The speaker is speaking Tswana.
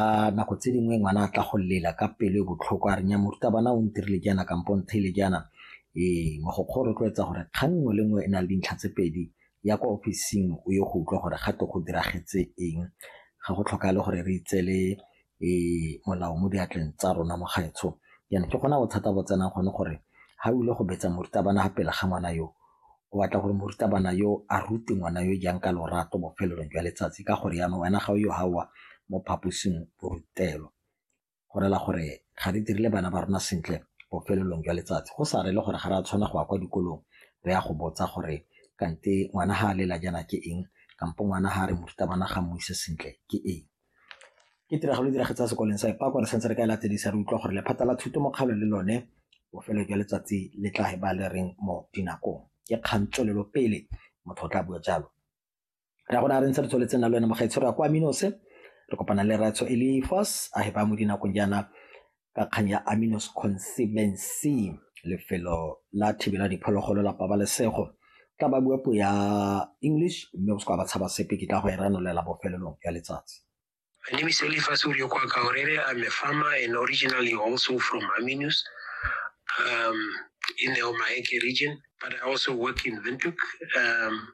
A nako tse dingwe ngwana a tla go lela ka pelo e botlhoko a renya morutabana o ntirile jaana kampo ntheile jaana ee mogokgo o rotloetsa gore kgang nngwe le nngwe e na le dintlha tse pedi ya kwa ofising o ye go utlwa gore ga to go diragetse eng ga go tlhoka le gore re itsele ee molao mo diatleng tsa rona mo gaetsho jaanong ke gona bothata bo tsenang gone gore ga o ile go betsa morutabana ga pele ga ngwana yo o batla gore morutabana yo a rute ngwana yo jang ka lorato bofelelong jwa letsatsi ka gore yana wena ga o yo gaowa mo phaposing borutelo go rela gore ga re dirile bana ba rona sentle bofelelong jwa letsatsi go sa rele gore ga re a tshwana go ya kwa dikolong re ya go botsa gore kante ngwana ga a lela jana ke eng kampo ngwana ga re morutabana ga mo ise sentle ke eng Ke tiragalo e diragetse sekolong sa Epako re santse re ka e latedisa re utlwa gore lephata la thuto mokgalo le lone bofelo jwa letsatsi le tla e ba le reng mo dinakong ke kgang tswelelo pele motho o tla bua jalo ra gona re ntse re tsweletse na le wena mogaitshwaro ya kwa minose re kopana le ratsho elifos a hepa mo dinakong jaana ka kgang ya Aminos Consibency lefelo la thibela diphologolo la pabalesego tla ba bua puo ya English mme o se kwa ba tshaba sepe ke tla go e ranolela bofelelong ya letsatsi My name is Eliphas Uriokwa Kaorere. I'm a farmer and originally also from Aminus um, in the Omaheke region, but I also work in Windhoek. Um,